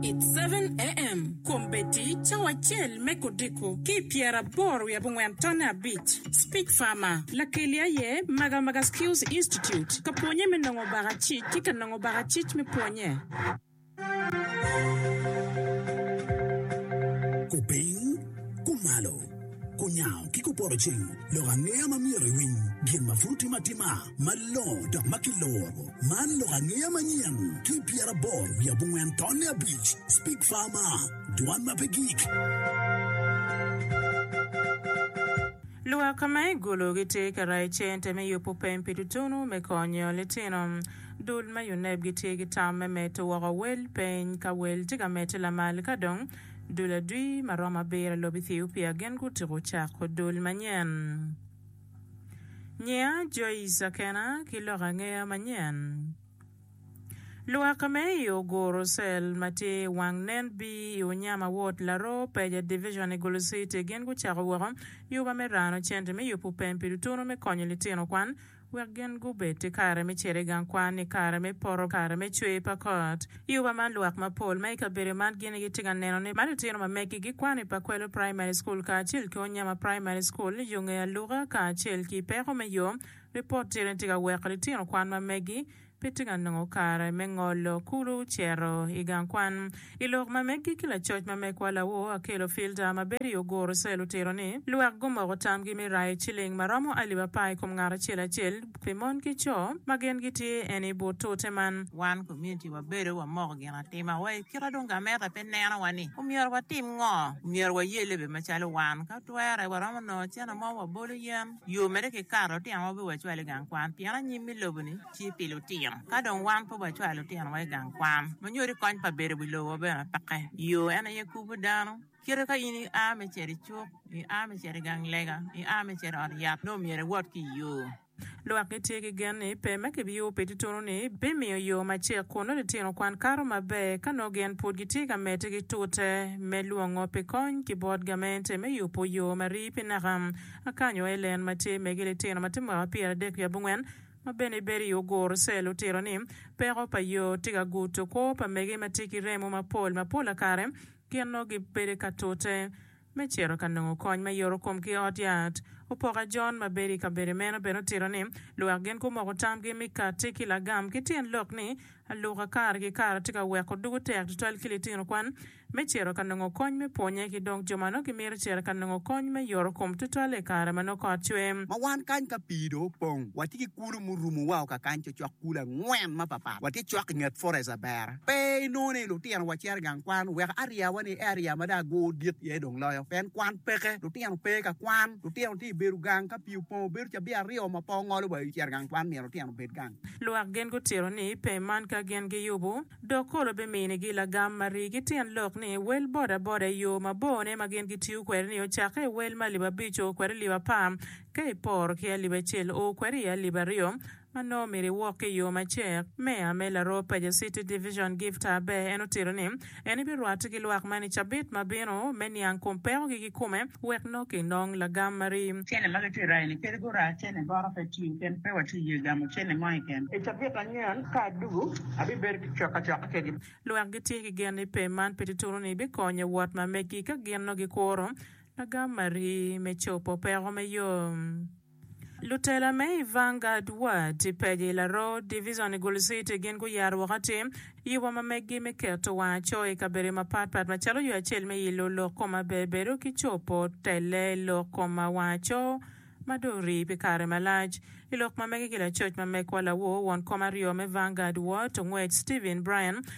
It's seven AM Kom Betty cawa acel me kodiko ki i pyeraboro wiye abongwen tonne abic Speech Farmer Lakeli aye Maga Maga Skills Institute Ka pwonye me nongo baka cic ki ka nongo baka cic me pwonye. Kupiny, kumalo, kunyango ki kupoto cing lok angeya ma myero iwiny gin ma pud timo atima. malongo dok ma kiloro. Man lok angeya manyen ki pyeraboro wiye abongwen tonne abic, Speak Farmer, dwan ma pe gik. Lwak ma i Gulu gitye ka rayo cente me yubo pem pi tutunu me konyo litino. Dul me UNEB gitye ki tam me medo woko wel peny ka wel tye ka medde lamal ka dong dul adwi ma romo abiro i lobo Ethiopia gin gutyeko cako dul manyen. Nyinga Joyce Akena ki loko angeya manyen. Luwakke me i Oguru cell ma tye i wang nen B i Unyama ward Laroo Peja division i Gulu city gin gucako woko yuba me rano cente me yubu pem pi tutunu me konyo litino kwan wek gin gubed ki kare me cito i gang kwan i kare me poto kare me cwer pa kot. I oba man lwak mapol ma i kabedo man gin gitye ka neno ni matitino ma megi gikwano i Pakwelo Primary School kacel ki Onyama Primary School yo nge aluka kacel ki peko me yo. Ripot tira ni tye ka weko litino kwan ma megi pe tye ka nongo kare me ngolo kulu cito i gang kwan i lok ma megi ki lacoc ma megwa Lawo Akello Filter ma bedo i Oguru Cell otito ni lwak gumoko tamgi me rayo ciling ma romo alip apar i kom ngat acel acel. pi mon ki co ma gin gitye en i but tute man. Wan komuniti wabedo wamoko ginatima wa i kite dong gameta pe nenowa ni omyero watim ngo. Omyero waye lebe macalo wan. Ka twere, waromo nongo cene mo wabolo yen yo mere ki kare lutinowa pe wacwal i gang kwan pien anyim me lobo ni tye pi lutino. Ka dong wan pe wacwalo lutinowa i gang kwan, ma nyodi kony pa bedo wi lobo bene peke. Yo en aye kubo dano. Kite ka in ia me cito i cuk, ia me cito i gang lega, ia me cito i ot yat, nongo myero iwot ki i yo. Lwak gitye ki gen ni pe ma kibiyubo pi tutunu-ni bimiyo yo macek kun nongo litino kwan kato maber ka nongo gin pud gitye ka medde ki tute me lwongo pi kony ki bot gamente me yubo yo ma rii pi naka. Akany o Ellen ma tye megi litino ma tye mwaka pyeradek ki abongwen ma bene bedo i Oguru Cell otito ni, Peko pa yo tye ka guto kwo pa megi ma tye ki remo mapol ma pola kare, gin nongo gibedo ka tute me cito ka nongo kony me yorokom ki ot yat. Opoka John ma bedo i kabedo meno bene otito ni, Lwak gin gumoko tamgi mi katti ki lagam ki tyen lok ni aluka kare ki kare atye ka weko dugo tek tutwal ki litino kwan me cito ka nongo kony me pwonye ki dong jo ma nongo gimito cito ka nongo kony me yorokom tutwalle i kare ma nongo kot cwer. Ma wan kany ka pii dong opong, watye ki kulu murumowa ka kany cocok kulu angwen mapapat. Watye cok i nget Forest Abera. Pe inongo ni lutino wa cito i gang kwan wek ariya wa ni area ma dong agur dit iye dong loyo pien kwan peke lutino pe ka kwan lutino tye ibedo gang ka pii opongo bedo cabi aryo ma pe ongolo wa i cito gang kwan myero lutino obed gang. Lwak gin gutito ni pe man ka gin giyubu dok kolo bimini gi lagam ma rii gi tyen lok ni wel boda boda i yoo ma bor ne ma gin gitiyo kwede ni ocakke i wel ma alip abic o kwede i alip apar ka iporo ki alip acel o kwede i alip aryo ma nongo myero iwok ki i yo macek. Meya me Laroo Paja City Division Gift Aber en otito ni en ebirwatte ki lwak man i cabit ma bino me niang kom pekogi kikome wek nongo kinong lagam ma ri. Cene ma gitye rayo ni kadi gura cene boro pe tiyo ken pe watye ye gamo cene mo iken. I cabit anyen ka adugu abibedo ki cok acoka kedi. Lwak gitye ki gen ni pem man pe tutunu ni bikonyo wot ma megi ka gin nongo gikuro lagam ma ri me copo peko me yo. Lutela me i Vanguard Ward i Page i Laroo Divizon i Gulu City gin guyaro woko atir i wa ma meggi me keto wang acoo i kabedo mapat pat macalo yo acel me ilo lok koma ber bedo ki cobo telle lok koma wang acoo ma dong orii pi kare malac. I lok ma mege ki lacoc ma megwa lawor won kom aryo me Vanguard Ward ongwec Stephen Bryan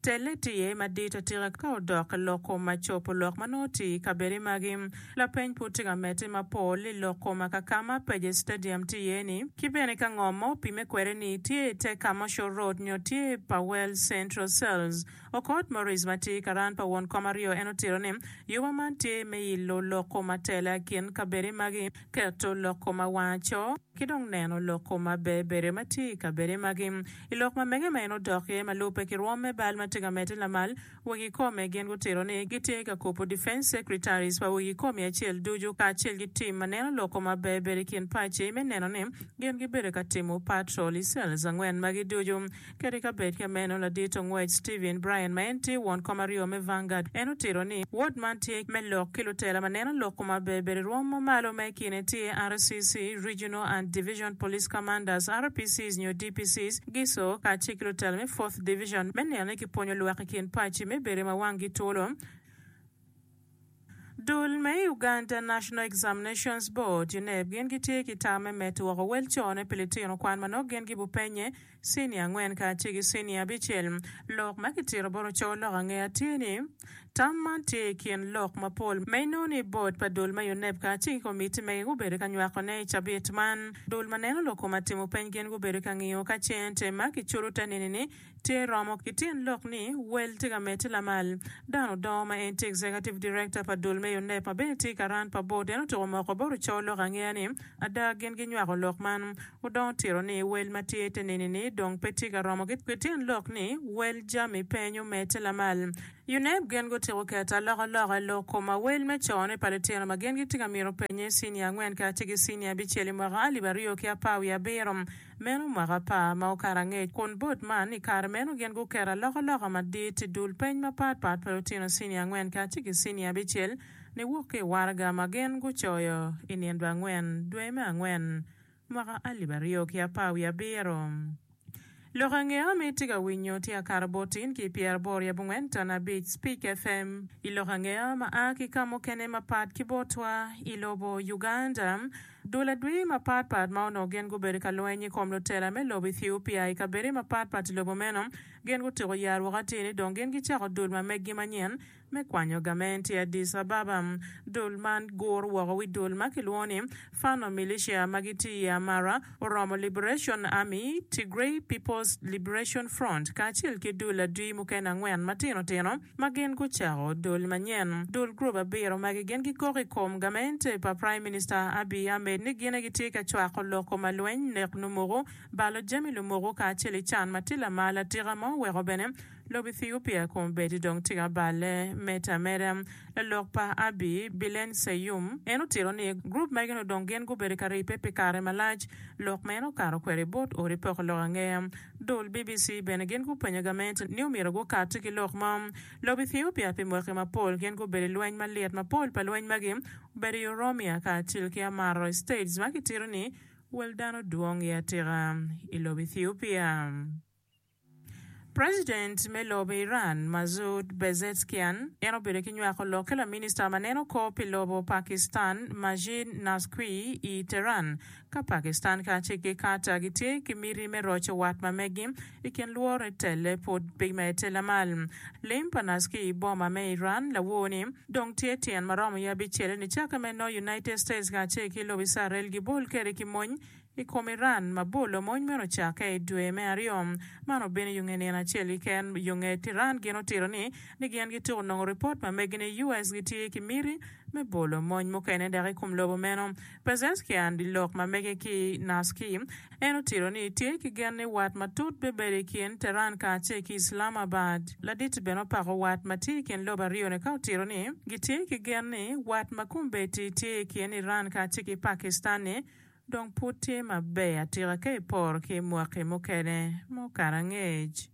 Telle tiye madit atika ka odok i lok koma cobo lok ma nongo oti i kabedi magi. Lapeny pud tye ka medde mapol i lok koma ka ka ma Pages Stadium tye iye ni, ki bene ka ngo ma opimme kwede ni tye i te Kamosho Road nyo tye pa Wells Central Cells. Okot Maurice ma tye karan pa won kom aryo en otito ni, Yuba man tye me ilo lok koma tela i kin kabedi magi, keto lok koma wangaco, ki dong neno lok koma bebedo ma tye i kabedi magi. I lok ma mege ma en odok iye ma lubbe ki rwom me bal ma tye ka medde lamal, wegi kome gin gutito ni gitye ka kubo Defence Secretaries pa wegi komi acel ducu kacel ki tim ma neno lok kome maber ber i kin paci me neno ni gin gibedo ka timo patrol i cells angwen magi ducu. Kadi ka bed ka meno, ladito ngwec Stephen Bryan ma en tye won kom aryo me Vanguard en otito ni wod man tye me lok ki lutela ma neno lok kome maber ber i rwom ma malo ma i kine tye RCC, Regional and Division Police Commanders, RPCs nyo APCs, GISO, kacel ki lutela me Fourth Division me neno ni kipwonyo lwak i kin paci me bedo ma wanggi twolo. Dul me Uganda National Examinations Board, UNEB, gin gitye ki tam me medo woko wel cone pi litino kwan ma nongo gin gibupenye cinia angwen kacel ki cinia abicel. Lok ma kitito bot ocowa lok angeya tye ni. Tam man tye i kin lok mapol ma inongo ni bod pa dul ma UNEB kacel ki komitti mege gubedo ka nywakone i cabit man. Dul ma neno lok koma timo peny gin gubedo ka ngiyo ka ce ente ma kiculo te nini ni tye romo ki tyen lok ni wel tye ka medde lamal. Dan Odoo ma en tye Executive Director pa dul me UNEB ma bene tye ka ran pa bod en otuko moko bot oco lok angeya ni ada gin ginywako lok man. Wudongo tiro ni wel ma tye ite nini-ni dong pe tye ka romo ki tyen lok ni wel jami peny omedde lamal. UNEB gin gutyeko keto alokaloka i lok kom awel me cone pa litino ma gin gitye ka mito penye cinia angwen kacel ki cinia abicel i mwaka alip aryo ki apar wiye abiro, meno mwaka apar ma okato angec, kun bot man i kare meno gin guketo alokaloka madit i dul peny mapat pat pa lutino cinia angwen kacel ki cinia abicel niwok ki i waraga ma gin gucoyo i nino angwen dwe me angwen. Mwaka alip aryo ki apar wiye abiro. Lok ange ma itye ka winyo tye akato botin ki pyeraboro i abongwen ton abic Speak FM i lok ange ma a ki ka mukene mapat ki botwa i lobo Uganda. Dul adwi mapat pat ma onongo gin gubedo ka lweny i kom lutela me lobo Ethiopia i kabedone mapat pat i lobo meno gin gutyeko yaro woko atir ni dong gin gicako dul ma meggi manyen Me kwanyo gament i Addis Ababa, dul man guro woko wi dul ma kilwongo ni Fano Militia ma gitye i Amara, Oromo Liberation Army, Tigray People's Liberation Front, kacel ki dul adwi mukene angwen matino tino ma gin gucako dul manyen. Dul gurup abiro magi gin gikok i kom gament pa Praim Minista Abiy Ahmed ni gine gitye ka cwako loko ma lweny, nek lumuku, balo jami lumuku kacel i can ma tye lamal atika ma oweko bene Lobo Ethiopia kun bedi dong tika balle me tamere. Lalok pa Abi, Bilen Seyum, en otito ni, Gurup magi nongo dong gin gubedo ka ribbe pi kare malac. Lok ma en okato kwede i bot odi poko lok angeya. Dul BBC bene gin gupenyo gamente ni omyero gukatti ki lok mo. Lobo Ethiopia pi mwaki mapol gin gubedo i lweny malit. Mapol pa lweny magi obedo i Oromia kacel ki Amaro States ma kitito ni wel dano dwong iye atika i lobo Ethiopia. President me lobo Iran, Masoud Pezeshkian, en obedo ki nywako lok ki laminista ma neno kor pi lobo Pakistan, Majid Nazqui, i Tehran, ka Pakistan kacel ki Qatar gitye ki miti me roco wat ma meggi i kin lwore telle pud pe medde lamal. Lim pa Nazqui i boma me Iran lawoo-ni dong tye tyen ma romo ya bicele nicakke me nongo United States kacel ki lobo Icarel gibol kwede ki mony I kom Iran, ma bolo mony meno ocakke i dwe me aryo, man obino yo nge nino acel keken. Yo nge Iran gin otito ni ni gin gituko nongo ripot ma megi ni US gitye ki miti me bolo mony mukene dok i kom lobo meno. Pezeshkian di lok ma mege ki Naski, en otito ni tye ki gen ni wat matut bibedo i kin Tehran kacel ki Islamabad. Laditi bene opako wat ma tye i kin lobo aryo-ni ka otito ni gitye ki gen ni wat ma kombeddi tye i kin Iran kacel ki Pakistan-ni Dong pud tye maber atika ka iporo ki mwaki mukene ma okato angec.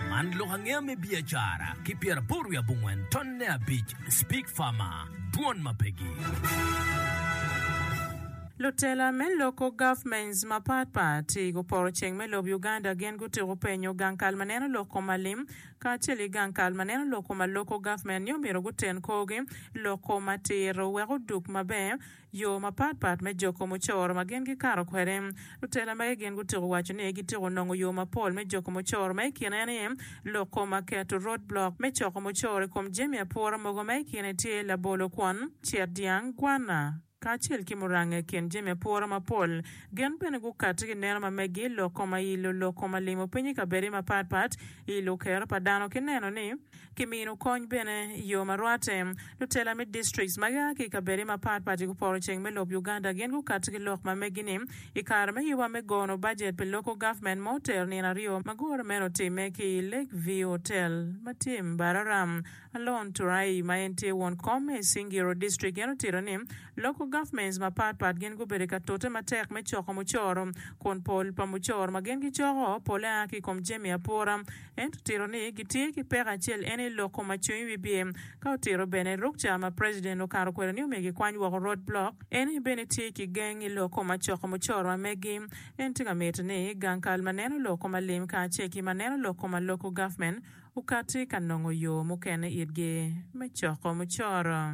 Man lok angeya me biacara ki pyeraboro wiye abongwen tonne abic Speak Farmer, Dwon ma pegi. Lutela me loko governments mapat pat i guporo ceng me lob Uganda gin gutyeko penyo gang kal ma neno lok kom alim kacel ki gang kal ma neno lok kom aloko government ni omyero guten korgi lok kom atir wek odug maber Yo mapat pat me joko mucoro ma gin gikato kwede. Lutela magi gin gutyeko waco ni gityeko nongo yo mapol me joko mucoro ma i kine ni, loko ma keto, road block, me coko mucoro i kom jami apura mogo ma i kine tye labolo, kwon, cet dyang, gwanna, kacel ki muranga i kin jami apura mapol. Gin bene gukati ki neno ma megi loko ma i luloko ma limo piny i kabedi mapat pat i lukero pa dano ki neno ni ki mino kony bene i yo ma rwatte. Lutela me distrikts ma gia ki i kabedde mapat pat i Guporoceng me lob Uganda gin gukato ki lok ma megi ni i kare me yuba me gono bajet pi Local Government ma otero nino aryo ma gure meno otimme ki i Lake View Hotel ma tye i Mbararam. Alone Turai ma en tye won kom me Isingiro District en otito ni Local Governments mapat pat gin gubedo ka tute matek me coko mucoro kun pol pa mucoro ma gin gicoko pole a ki i kom jami apura Ento tiro ni gitye ki peko acel en aye loko ma cwinyi wibye. Ka otiro bene ruk ca ma president okato kwede ni omyero gikwany woko road block, en aye bene tye ki geng i loko ma coko mucoro ma megi. En tye ka mito ni gang kal ma neno loko ma lim kacel ki ma neno loko ma local government okati ka nongo yo mukene itgi me coko mucoro.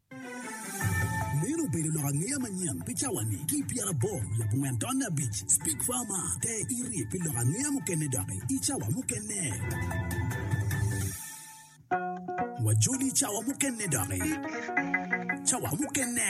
Meno obedo lok angeya manyen pi cawa-ni. Ki i pyerabor labongo en tonne abic, Speak Farmer, te irye pi lok angeya mukene doki i cawa mukene. Wajoli i cawa mukene doki. Cawa mukene.